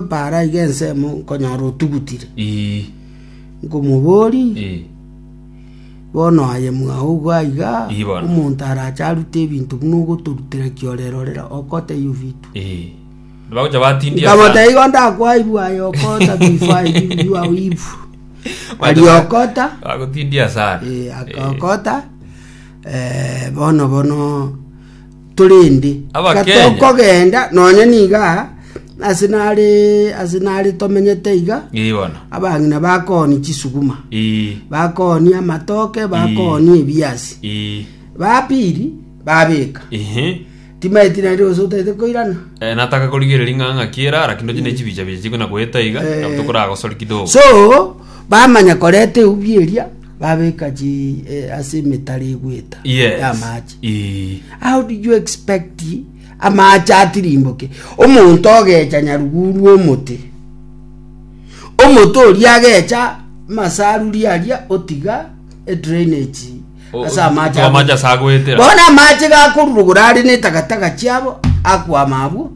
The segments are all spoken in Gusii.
Mbaraiga ensemo nkonyora otugutire, Ii. nkomobori, Ii. Bono aye mwao igwa aiga, Ii, bono. omonto arache arute ebinto buna ogotorutera kiorere orera okota eyio vitu. Ii. Bagocha batindia Nkamota sana. igo ndakwaibwa aye okota bifa ebi biwa ibu. Ari okota, Bagotindia sana. eh, akakota, eh, bono bono Korende Abakenya. katokogenda nonya niga ase nare ase nare tomenyete iga Ii bono. abang'ina bakoni chisuguma Ii. bakoni amatoke bakoni ebiasi Ii. bapiri babeka Ehe. timaeti nari gose otaete koirana Eh, nataka korigereria ng'a ng'aki era araki ndoche ne chibicha bicha chikona goeta iga Eh. nabo tokoragosori kidogo so bamanya koreta eubieria babeka chi eh, ase emetaro egweta Yes. yamache Ee. How do you expect amaache atirimboke omonto ogecha nyaruguru rw'omote? Omote oria agecha masaruri aria otiga e drainage O- ase amache o- amache ase agoetera. bono amache gakorurugura are netagataga chiabo akwama abwo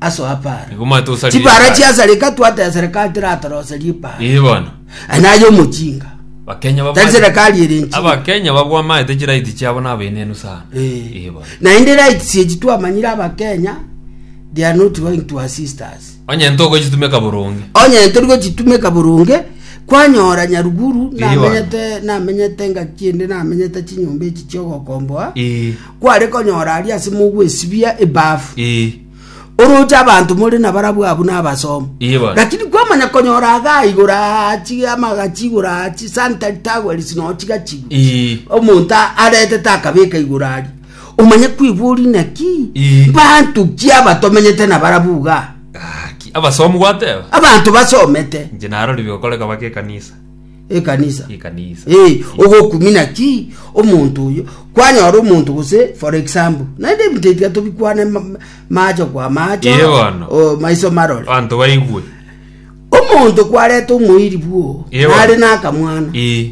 aso apara Nigo omanyete osarire chibara ipara. chiasareka twataya serikali tiratorose ripara Ee bono. naye omochinga Bakenya tari babwate. serikali ere nchinga Abakenya babwamaete chiraiti chiabo na abenenu sana. Ee bono. naende rights echi twamanyire abakenya they are not going to assist us Onye ntoko chitumeka boronge. onye tori gochitumeka boronge kwanyora nyaruguru Ee, namenyete namenyete ngaki ende namenyete chinyomba echi chiogokomboa Ee. kware konyora aria ase mogwesibia ebafu Eh, oroche abanto more na barabwo abu nabasomo Iye bono. lakini kwamanya konyora agaigora achi amagachigora achi sanitary towels no chigachigwa eh, omonto a- aretete akabeka igora ari omanye kwibori naki Ii. bantu ki abatomenyete na barabuga gaki. abasomu gwateba abanto basomete inche narori bigokoreka baka ekanisa ekanisa ekanisa Eh, ogokumina ki omonto oyo kwanyora omonto gose for example naende ebitebia tobikwane ma- macho kwa macho Ee bono. o, maiso marore abanto baigwe omonto kwareta omoiri bwo Ee bono. nare nakamwana Eh,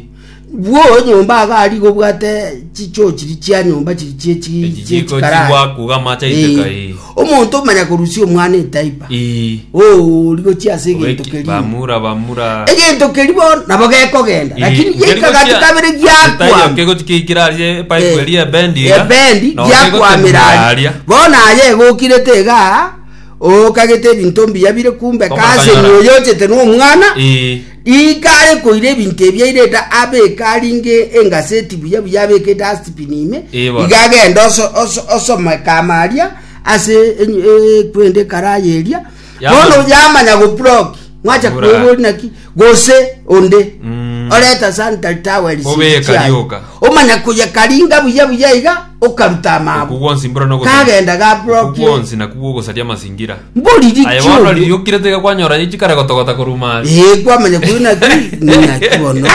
bwo nyomba agari gobwate chichochiri chia nyomba chiri chie chi- chie Echijiko chikarara. chigwakuga amache aiteka, Eh, eh. Omonto omanya korusia omwana etaiba, Ii. oo, ori gochia ase egento Obeki- keria. Bamura, bamura. Egento keria bono nabo gekogenda, Ii, lakini nkeri giaika gati gochia- kabere Ase tayo giakwama. kegochi kiikire aria epaipu eria ebendi iga, ebendi na okegotemura giakwamiraria aria. bono aye egokirete iga okagete ebinto mbuya bire kumbe Omakanyora. kasenyi oyochete nomwana Ii. Iga are koira ebinto ebi airete abeke aringe engaseti buya buya abekete ase tipini ime, Ee, bono. iga agende oso- oso- osomeka ama aria ase enyu- ekwenda ekarayi eria, Yamanya. bono yamanya gobloki mwacha Bura. kwebori naki gose onde Mm. oreta sanitary towels Obeka chiaye. rioka. omanya koyekaringa buya buya iga okaruta okwo amaabo gwonsi mbura nogosaria kagenda okwo gabrokie gwonsi nakwo gwogosaria amasingira mbori aye bono richoria ririokire tiga kwanyora ye chikare gotogota korwa mari ee kwamanya kuri naki naki bono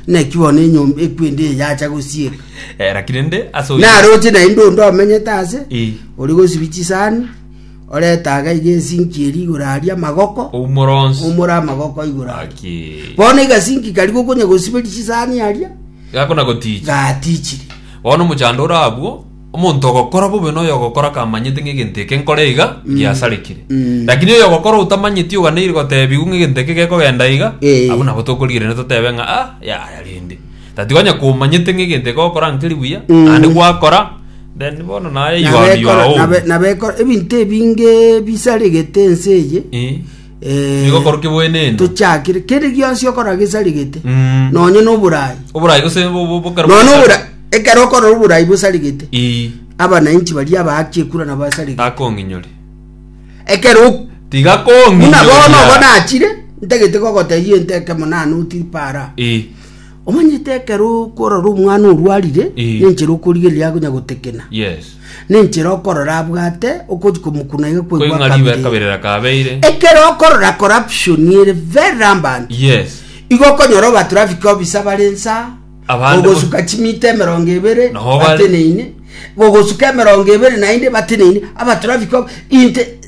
naki bono enyomba ekwende eye yacha gosieka Eh, lakini nde ase oyo- naroche naende onde omenyete ase Eh, ori gosibi chisani oretaga iga esinki eri igoro aria amagoko oumora onsi omora amagoko igoro aria Aki. bono egasinki kari gokonya gosiberi chisani aria gakona goticha gatichire Bono omochando ore agwo, omonto ogokora bobe na oyogokora kamanyete ng'a egento eke nkore iga, giasarekire. Mm. Lakini oyogokora otamanyeti oganeire gotebigwa ng'a egento eke gekogenda iga, Eh. abwo nabo tokorigererania totebe ng'a ah, yaya rende. Tati onye komanyete ng'a egento eke ogokora nkeri buya, Mm. naende gwakora, then bono naye you are- you are Nabekora- own. nabe- nabekora ebinto ebinge bisaregete ense eye Eh. Eh, Nigo korwa kibwenene. tochakire kere gionsi okora gesarigete Mm. nonye noborai Oborai gose bo- bo- bokero nonye bosare. obora ekero okora oborai bosarigete Ii, abananchi baria abaaki ekura nabo asarigete akong'inyori. ekero ok- Tiga buna bono obo kong'inyoria. nachire ntagete gogotebia enteke monano otiri para Ii. Omanyete ekero okorora omwana orwarire, Eh. nenchera okorigereria akonya gotekena, Yes. nenchera okorora abwate okochi komokuna iga Kweng'a ribe kwegwakabire. kabirera kabeire. Ekero okorora corruption ere very rampant, Yes. igo okonyora oba traffic officer bare nsa, Abande bo- ogosuka chimita emerongo ebere Noho bare- bateneine, ogosuka emerongo ebere naende bateneine, aba traffic of- inte